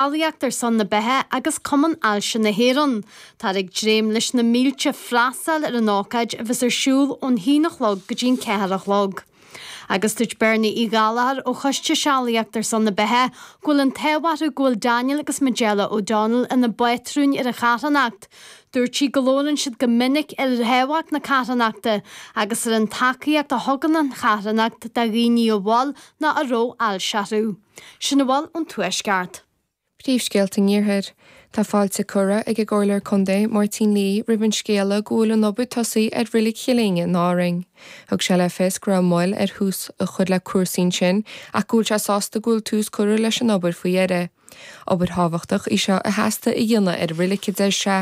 Ealaíocht ar son na Beatha agus Cumann Ailse na hÉireann. Táthar ag dréim leis na mílte freastail ar an ócáid a bheas ar siúl ón haon a chlog go dtí an ceathair a chlog. Agus dúirt Bernie Uí Ghallchóir ó Choiste Sealaíocht ar son na Beatha go bhfuil an t-ádh orthu go bhfuil Daniel agus Majella O'Donnell ina bpátrúin ar an charthanacht. Dúirt sí go labhrann siad go minic ar thábhacht na carthanachta agus ar an tacaíocht a thugann an charthanacht do dhaoine a bhfuil ná a raibh ailse orthu. Sin a bhfuil ón Tuaisceart. Príomhscéalta an Iarthair. Tá fáilte curtha ag an gComhairleoir Contae, Máirtín Lee, roimh an scéala go bhfuil an obair tosaithe ar Reilig Chill Éinne in Árainn. Thug sé le fios go raibh moill ar thús a chur le cúrsaí ansin ach go bhfuil sé sásta go bhfuil tús curtha leis an obair faoi dheireadh. Obair thábhachtach í seo a theastaigh a dhéanamh ar an reilig, a deir sé.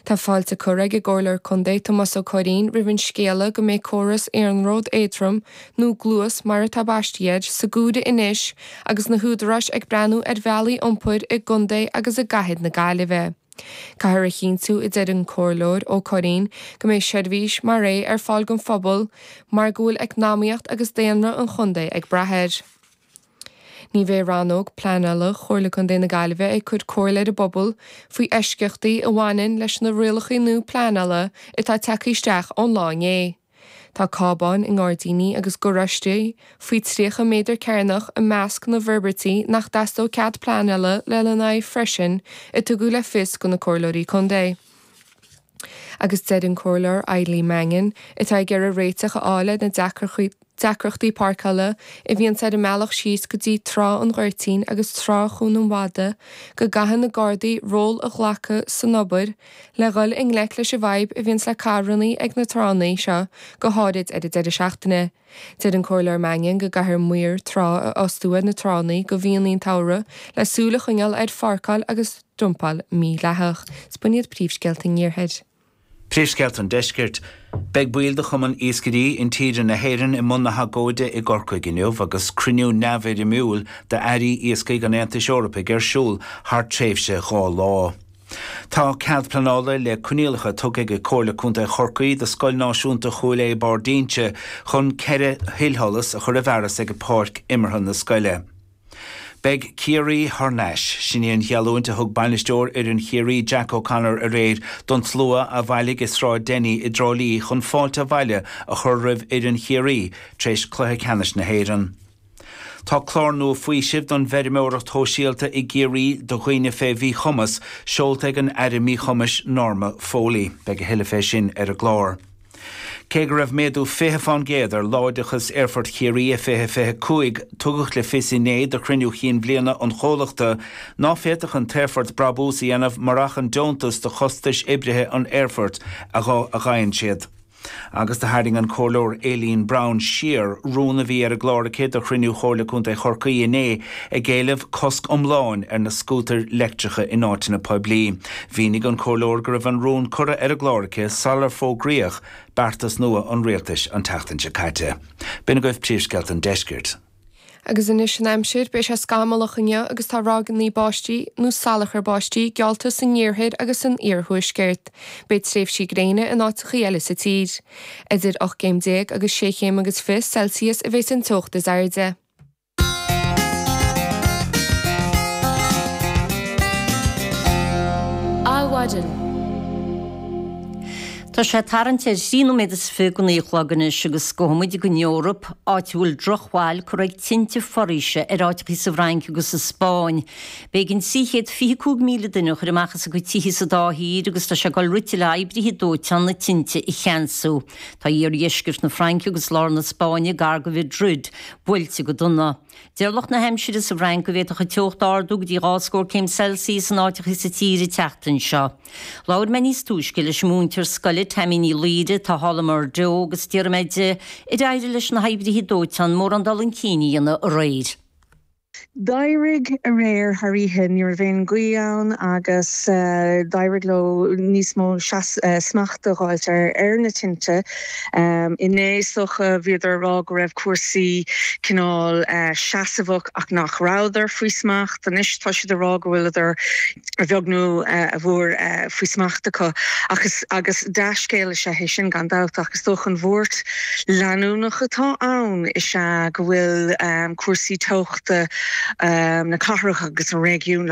Tá fáilte curtha ag an gComhairleoir Contae, Tomás Ó Curraoin, roimh an scéala go mbeidh córas iarnróid éadrom, nó Gluas mar atá baistithe air, sa gcomhaireamh anois agus na húdaráis ag breathnú ar bhealaí iompair i gcontae agus i gcathair na Gaillimhe. Caithfear a chinntiú, a deir an Comhairleoir Ó Curraoin, go mbeidh seirbhís mar é ar fáil don phobal mar go bhfuil eacnamaíocht agus daonra an chontae ag brath air. Ní bheidh Rannóg Pleanála Chomhairle Contae na Gaillimhe ag cur comhairle ar an bpobal faoi eisceachtaí a bhaineann leis na rialacha nua pleanála atá tagtha isteach ón lá inné. Tá cábáin i ngairdíní agus garáistí faoi 30 méadar cearnach i measc na bhforbairtí nach dteastóidh cead pleanála lena n-aghaidh freisin a tugadh le fios do na Comhairleoirí Contae. Agus deir an Comhairleoir Eileen Mannion, atá ag iarraidh réiteach a fháil ar na deacrachtaí páirceála a bhíonns ar an mbealach síos go dtí Trá an Ghoirtín agus Trá Chuan an Mhada, go gcaithfidh na Gardaí ról a ghlacadh san obair le dhul i ngleic leis an bhfadhb a bhíonns le carrannaí ag na tránna seo, go háirid ar an deireadh seachtaine. Deir an Comhairleoir Mannion go gcaithfear maoir trá a fhostú ar na tránna do mhíonna an tsamhraidh le súil a choinneáil ar pháirceáil agus dumpáil mhídhleathach. Is b'in iad príomhscéalta an Iarthair. Príomhscéalta an Deiscirt. Beidh baill de Chumann Iascairí Intíre na hÉireann i mbun na hagóide i gCorcaigh inniu agus cruinniú neamhfhoirmiúil d'Airí Iascaigh an Aontais Eorpaigh ar siúl thar tréimhse dhá lá. Tá cead pleanála le coinníollacha tugtha ag Comhairle Contae Chorcaí do Scoil Náisiúnta Chúil Aodha Barr d'Ínse chun ceithre thuilsholas a chur i bhfearas ag páirc imeartha na scoile. Beidh Ciarraí thar n-ais. Sin í an gheallúint a thug bainisteoir fhoireann Chiarraí, Jack O'Connor, aréir don tslua a bhailigh i Sráid Denny i dTrá Lí chun fáilte abhaile a chur roimh fhoireann Chiarraí tar éis Cluiche Ceannais na hÉireann. Tá clár nua faoisimh don bhfeirmeoireacht shóisialta i gCiarraí do dhaoine fé mhíchumas seolta ag an Aire Míchumais, Norma Foley. Beidh a thuilleadh fé sin ar an gclár. Cé go raibh méadú 20 fán gcéad ar láimhdeachas Aerfort Chiarraí i 2025, tugadh le fios inné do chruinniú chinn bhliana an chomhlachta ná féadfadh an t-aerfort brabús a dhéanamh murach an deontas do chostais oibrithe an aerfoirt a fhaigheann siad. Agus do tharraing an Comhairleoir Aileen Brown siar rún a bhí ar an gclár aici do chruinniú Chomhairle Contae Chorcaí inné, ag éileamh cosc iomláin ar na scútair leictreacha in áiteanna poiblí. Mhínigh an comhairleoir go raibh an rún curtha ar an gclár aici sular fógraíodh beartas nua an rialtais an tseachtain seo caite. B'in agaibh príomhscéalta an deiscirt. Agus anois an aimsir. Beidh sé scamallach inniu agus tá ráigeanna báistí, nó salachar báistí, geallta san iarthair agus san iarthuaisceart. Beidh tréimhsí gréine in áiteachaí eile sa tír. Idir ocht gcéim déag agus sé chéim agus fiche Celsius a bheas an teocht is airde. Adhmhaidin. Tá sé tarraingt ar thrí nóiméad is fiche go naoi a chlog anois agus gabhfaidh muid ag an Eoraip, áit a bhfuil drochbhail curtha ag tinte foraoise ar áiteachaí sa bhFrainc agus sa Spáinn. B'éigin trí chéad fiche cúig míle duine a chur amach as a gcuid tithí sa dá thír agus tá sé ag dul rite le oibrithe dóiteáin na tinte a cheansú. Tá iardheisceart na Fraince agus lár na Spáinne gar do Mhaidrid. buailte go dona. Deir lucht na haimsire sa bhFrainc go bhféadfadh an teocht ardú go dtí dhá scór céim Celsius in áiteachaí sa tír an tseachtain seo. Labhair mé níos túisce leis an múinteoir scoile Tammy Ní Laoire atá thall i mBordeaux agus d'iarr mé di ar éirigh leis na hoibrithe dóiteáin mórán dul chun cinn a dhéanamh aréir. D'éirigh aréir thar oíche, ní raibh aon ghaoth ann agus d'éirigh leo níos mó smacht a dh'fháilt ar na tinte. Inné, is dócha, bhíodar ag rá go raibh cúrsaí cineál seasmhach ach nach rabhadar faoi smacht. Anois, tá siad ag rá go bhfuileadar a bheag nó a mhór faoi smacht acu. Ach agus dea-scéal is ea é sin gan dabht, ach is dócha an bhuairt leanúnach atá ann is ea go bhfuil cúrsaí teochta na cathrach agus an réigiúin le